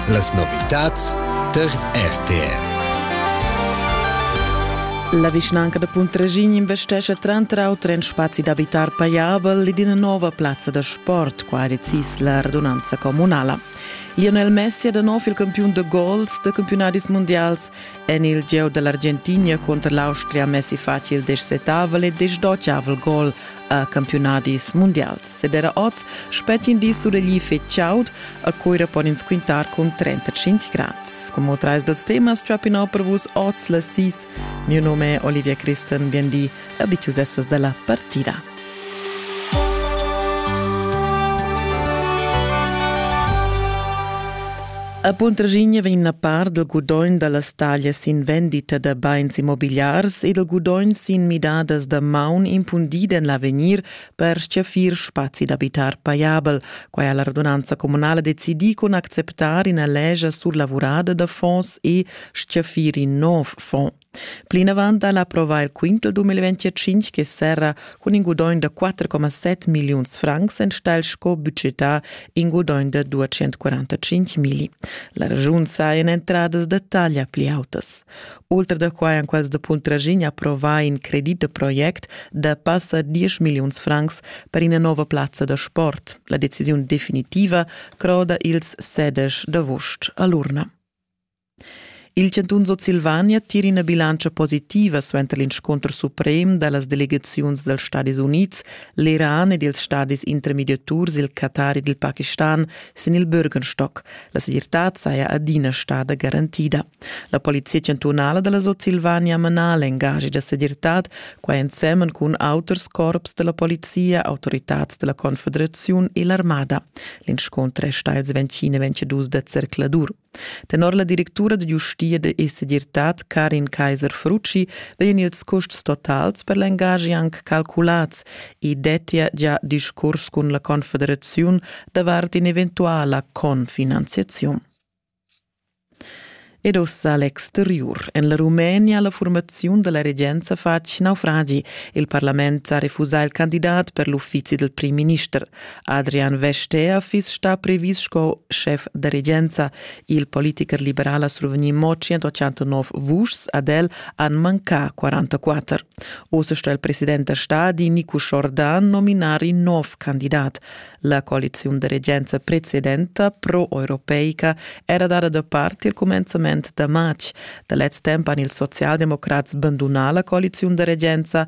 Las novitads tar RTR. La vischnanca da Puntrasin investescha tranter auter en spazi d'abitar paiabel ed ina nova plazza da sport, qua decis la radunanza communala. Lionel Messi è da nov il campiun da gols da campionadis mundials en il gieu dall'Argentina conter l'Austria Messi fa il dexetavel e dexdottavel gol a campiunadis mundials. Ed era oz spetgin di suregli fetg chaud. A Coira pon ins quintar cun 35 grads. Como trais dals temas trappin per vus oz las sis. Mio nome è Olivia Christen, bien di, abitussessas dalla partida. A Puntraschigna vegn a par dal gudogn da las taglias sin vendita da bains immobigliars e dal gudogn sin midadas da maun impundida en l'avegnir per stgaffir spazi d'abitar pajabel. Quai ha la radunanza communala decidì cun acceptar ina lescha surlavurada da fonds e stgaffir in nov fond. Plinavant ha la prova il quintel 2025 che serra cun in gudogn da 4,7 milliuns francs enstagl sco budgetà in gudogn da 245 mili. La regiun sa en entradas da taglia pli autas. Oltre da quai han quels da Puntrasin approvà in credit da project da passa 10 milliuns francs per ina nova plazza da sport. La decisiun definitiva croda ils sedesch d'avost a l'urna. Il chantun Sutsilvania tira ina bilantscha positiva suenter l'inscunter suprem da las delegaziuns dals Stadis Unids, l'Iran ed ils stadis intermediaturs, il Qatar ed il Pakistan sin il Bürgenstock. La segirtad saja adina stada garantida. La polizia chantunala da la Sutsilvania mana l'engagi da segirtad, quai ensemen cun auters corps da la polizia, autoritads da la Confederaziun e l'armada. L'inscunter è stà ils 20 e 22 da zercladur. Tenor la directura da giustia da segirtad Karin Kaiser-Frucci vegnan ils custs totals per l'engagi anc calculats. I dettia gia discurs cun la Confederaziun davart in'eventuala confinanziaziun. Ed ossa l'exteriur. En la Rumenia la formaziun da la regenza fa naufragi. Il parlament ha refusà il candidat per l'uffizi del prim minister. Adrian Vestager fiss stà previs sco schef da regenza. Il politicher liberal ha survegnì mo 189 vuschs, ad el han mancà 44. Oz sto il president da stadi Nico Jordan nominar in nov candidat. La coaliziun da regenza precedenta pro-europeica era dada da part il cumenzament da matg. Da lez temp han ils socialdemocrats bandunà la coaliziun da regenza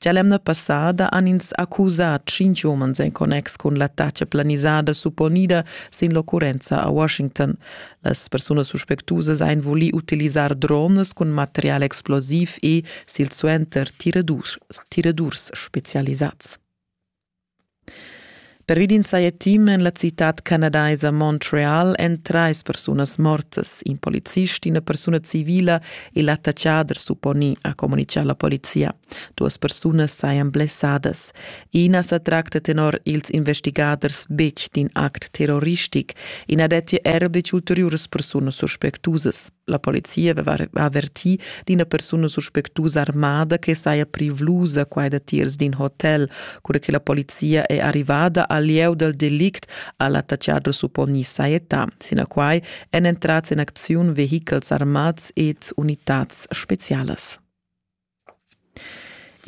Gia l'emna passada han ins accusà tschintg umens en connex cun l'attacca planisada supponida sin l'occurrenza a Washington. Las persunas suspectusas han vulì utilisar drones cun material explosiv e silsuenter tiradurs spezialisads. Pervi d'in saja team en la citad canadaisa Montreal èn trais persunas mortas, in policist, ina persuna civila e l'attacchader supponì, ha communitgà la polizia. Duas persunas sajan blessadas. I na sa tracta tenor ils investigaders betg d'in act terroristic. I na dettia er betg ulteriuras persunas suspectusas. la polizia aveva avertì d'ina persuna suspectusa armada che saja privlusa quai datiers d'in hotel. Cura che la polizia è arrivada al lieu dal delict ha l'attaccader supponì sajetà. Sinaquai èn entrads en acziun vehichels armads ed unitads spezialas.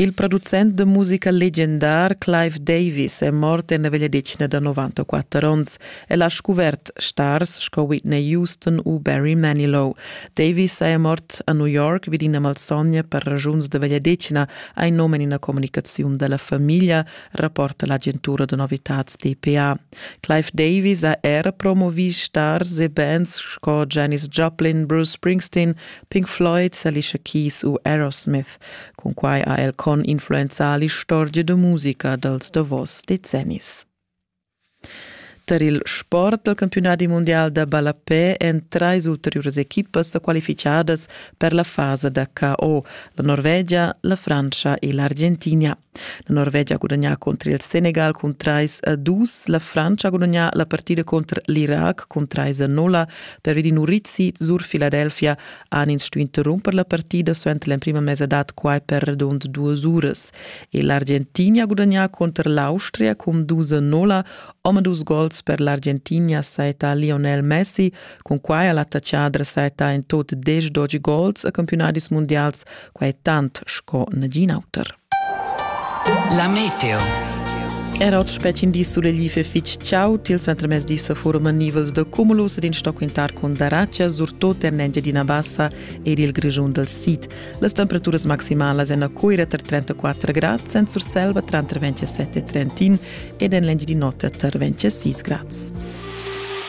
Il producent da musica legendar Clive Davis è mort en la vegliadetgna da 94 onns. El ha scuvert stars sco Whitney Houston u Barry Manilow. Davis saja mort a New York vid ina malsogna per ragiuns da vegliadetgna, ha in num en ina communicaziun da la famiglia, rapporta l'agentura da novitads DPA. Clive Davis ha era promovì stars e bands sco Janis Joplin, Bruce Springsteen, Pink Floyd, Alicia Keys u Aerosmith. Cun quai ha el con influenzà l'istorgia da musica dals davos decennis. Tar il sport dal campiunadi mundial da ballapè èn trais ulteriuras equipas sa qualificadas per la fasa da KO, la Norvegia, la Frantscha e l'Argentina. La Norvegia ha gudagnà contra il Senegal cun 3 a 2. La Frantscha ha gudagnà la partida contr l'Irac cun 3 a 0. Per Edin Urizzi sur Filadelfia han ins stuì interrumper la partida suenter l'emprima mesadad quai per radund duas uras. E l'Argentinia ha gudagnà contr l'Austria cun 2 a 0. Omadus gols per l'Argentinia saetta Lionel Messi Cunquai ha l'attachadra saita in tut desch dodge goals a campionadis mundials, quai tant sco nagin auter. La meteo Era oz spetgin di sulegli fich ciao tils entremez di sa forum nivels da cumulus ed in stock intar cun daraccia surtot er nengia d'ina bassa ed il grigiun dal sid. Las temperaturas maximalas èn a Cuira tra 34 grad, sen Surselva tranter 27 e 31 ed en l'Engiadin'Ota tar 26 grads.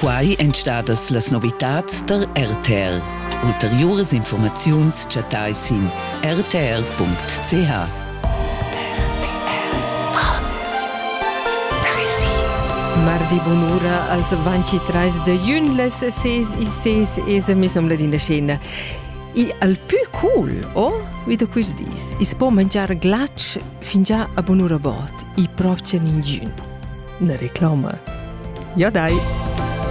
Quai èn stadas las novitads tar RTL. Ulteriuras informaziuns chattai sin rtr.ch. Mardi bunura als 23 de jun les 6 e 6 es a mis nom ladina scena. E al più cool, oh, vi da quist dis, is po mangiar glac fingià a bunura bot. i propcha ningün. Ne reclama. Ja dai!